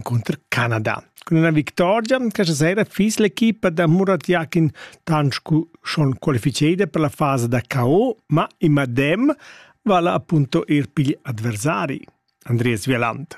cunter Canada. Cun una victoria, questa sera fis l'equipa da Murat Yakin Tanșcu schon qualificada per la fase da KO, ma in madem vala appunto ir pigl adversari, Andreas Vieland.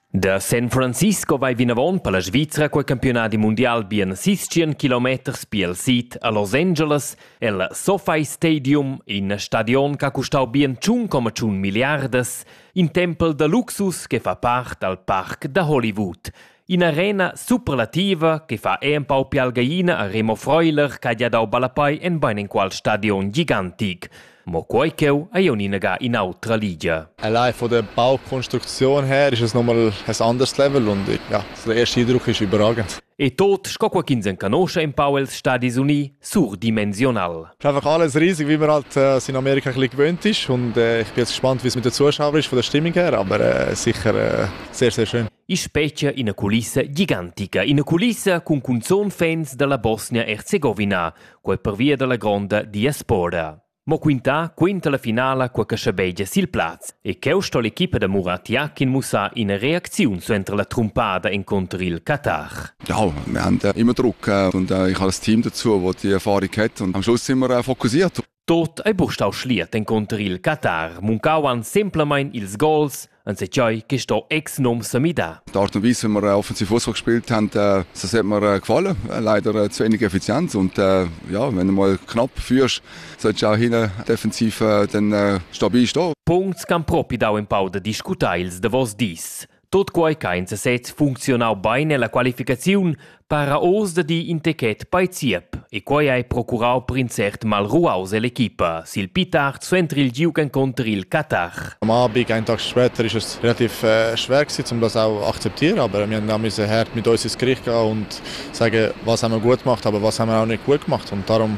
Da San Francisco vai vinavon per la Svizra quei campionadi mundial bien 60 km piel sid a Los Angeles el SoFi Stadium, in stadion che ha custau bien 1,1 miliardas in tempel da luxus che fa part dal parc da Hollywood. In'arena superlativa che fa empau pialgaina a Remo Freuler che ha gia dau ballapei en bein enqual stadion gigantic. Mo quei cheu ei uninaga in'autra ligia. Allein von der Baukonstruktion her ist es nochmal ein anderes Level und ich, ja, so der erste Eindruck ist überragend. E tot sco qualch'ins encanosce empau els Stadis Uni surdimensional. Ist einfach alles riesig, wie man halt äh, in Amerika ein gewöhnt ist. Und äh, ich bin jetzt gespannt, wie es mit den Zuschauern ist von der Stimmung her, aber äh, sicher äh, sehr, sehr schön. In specie in una culissa gigantica, in una culissa con cunzon fans della Bosnia-Herzegovina, quel pervia della gronda diaspora. Mo quintà quinta la finala quel che schabegia sil plaz. E cheu sto l'equipa da Muratiá ch'in mussar ina reacziun suenter la trumpada encunter il Qatar. Ja, wir haben ja immer Druck und ich habe das Team dazu, das die Erfahrung hat und am Schluss sind wir fokussiert. Tot ei bustau schliet encunter il Qatar, muncavan semplamein ils gols, anzeignai che sto ex nom semidà. Die Art und Weise, wie wir offensiv Fußball gespielt haben, das hat mir gefallen. Leider zu wenig Effizienz und ja, wenn du mal knapp führst, seit jau hina defensiv den stabil sto. Puncts c'han propi dau in pau da discutar ils davos dis. Tot quai che in sesez funzionau bein nella qualificaziun para oz da di in techet bei Zierp e quai hai procurau per in cert mal ruaus l'equipa sil Pitard entri il giu contr il Qatar. Am Abend einfach später ist es relativ äh, schwer gewesen, um das auch akzeptieren, aber wir haben auch müssen hart mit uns ins Gericht gehen und sagen, was haben wir gut gemacht, aber was haben wir auch nicht gut gemacht und darum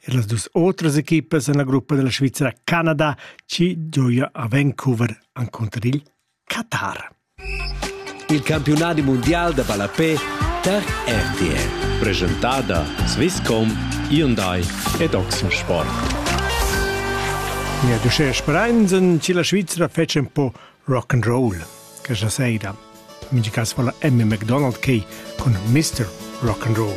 Er las dus otras equipas en la gruppa della Svizzera Canada ci gioia a Vancouver encunter il Qatar. Il campiunadi mondial da ballapé tar RTL. Presentada Swisscom, Hyundai ed Oxensport. Ja, du schest Bereinsinn, ci la Svizzera fece un po' rock and roll, che sa seira. In caso fa la Emmy McDonald che con Mr. Rock and Roll.